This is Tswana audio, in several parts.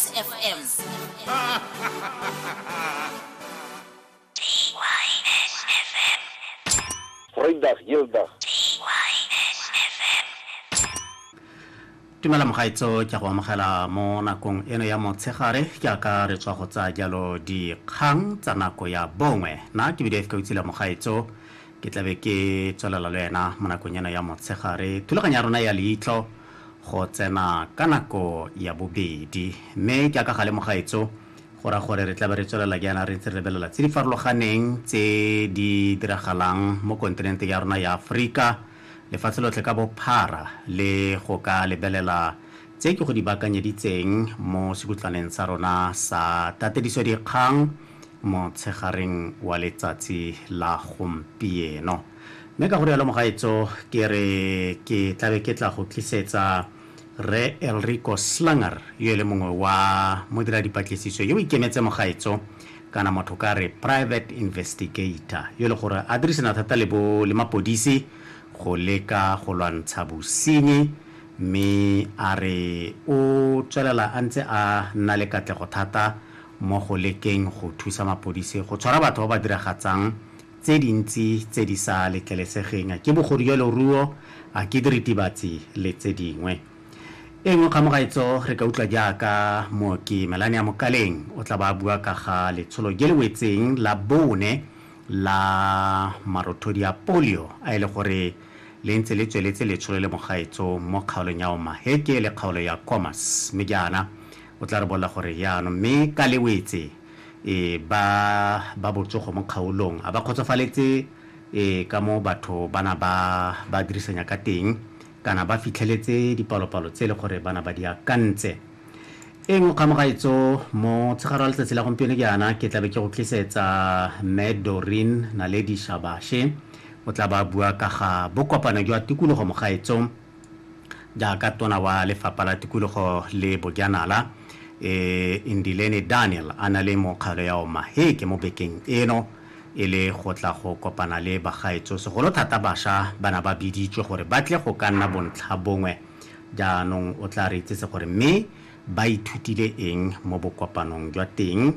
FM. Goeiedag, heeldag. tumela mogaetso ke a go amogela mo nakong eno ya motshegare jaaka re tswa go tsaya jalo dikgang tsa nako ya bongwe na ke bidf ka utsile mogaetso ke tlabe ke tswelela le wena mo nakong eno ya motshegare thulaganyo ya rona ya leitlho go tsena ka nako ya bobedi. Mme ke a ka gale mogaetso go ra gore re tlabe re tswelela jaana re ntse re lebelela tse di farologaneng tse di diragalang mo kontinenteng ya rona ya Aforika lefatshe lotlhe ka bophara le go ka lebelela tse ke go di bakanyeditseng mo sekutlaneng sa rona sa tatediso dikgang motshegareng wa letsatsi la gompieno. Mme ka go rialo mogaetso ke re ke tlabe ke tla go tlisetsa Rre Elrico Slanger yo e le mongwe wa modiradipatlisiso yo o ikemetse mogaetso kana motho ka re private investigator yo e le gore a dirisana thata le bo le mapodisi go leka go lwantsha bosenyi mme a re o tswelela a ntse a nna le katlego thata mo go lekeng go thusa mapodisi go tshwara batho ba ba diragatsang tse dintsi tse di sa letlelesegeng, a ke bogorieloruo, a ke diritibatsi le tse dingwe. E nngwe kgamogaetso re ka utlwa jaaka Mooki Melania Mokaleng o tla ba a bua ka ga letsholo je le wetseng la bone la marothodi a polio a e le gore le ntse le tsweletse letsholo le mogaetso mo kgaolong ya Omaheke le kgaolo ya Khomas mme jaana o tla re bolla gore jaanong mme ka le wetse e ba ba botsogo mo kgaolong a ba kgotsofaletse e ka mo batho bana ba ba dirisanya ka teng kana ba fitlheletse dipalopalo tse le gore bana ba di akantse e nngwe kgamogaetso mo tshegaro ya letsatsi la gompieno jaana ke tlabe ke go tlisetsa mme dorin naledi shabashe o tla ba bua ka ga bokopano jwa tikologo mogaetso jaaka tona wa lefapha la tikologo le bojanala e Ndileni Daniel a na le mokgalo ya Omaheke mo bekeng eno e le go tla go kopana le bagaetso segolo thata basha bana ba biditswe gore ba tle go ka nna bontlha bongwe jaanong o tla re itsese gore mme ba ithutile eng mo bokopanong jwa teng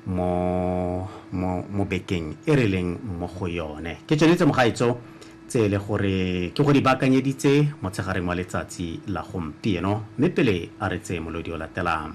mo mo bekeng e re leng mo go yone ke tsone tse mogaetso Tse e le gore ke go di baakanyeditse motshegareng wa letsatsi la gompieno, mme pele a re tseye molodi o latelang.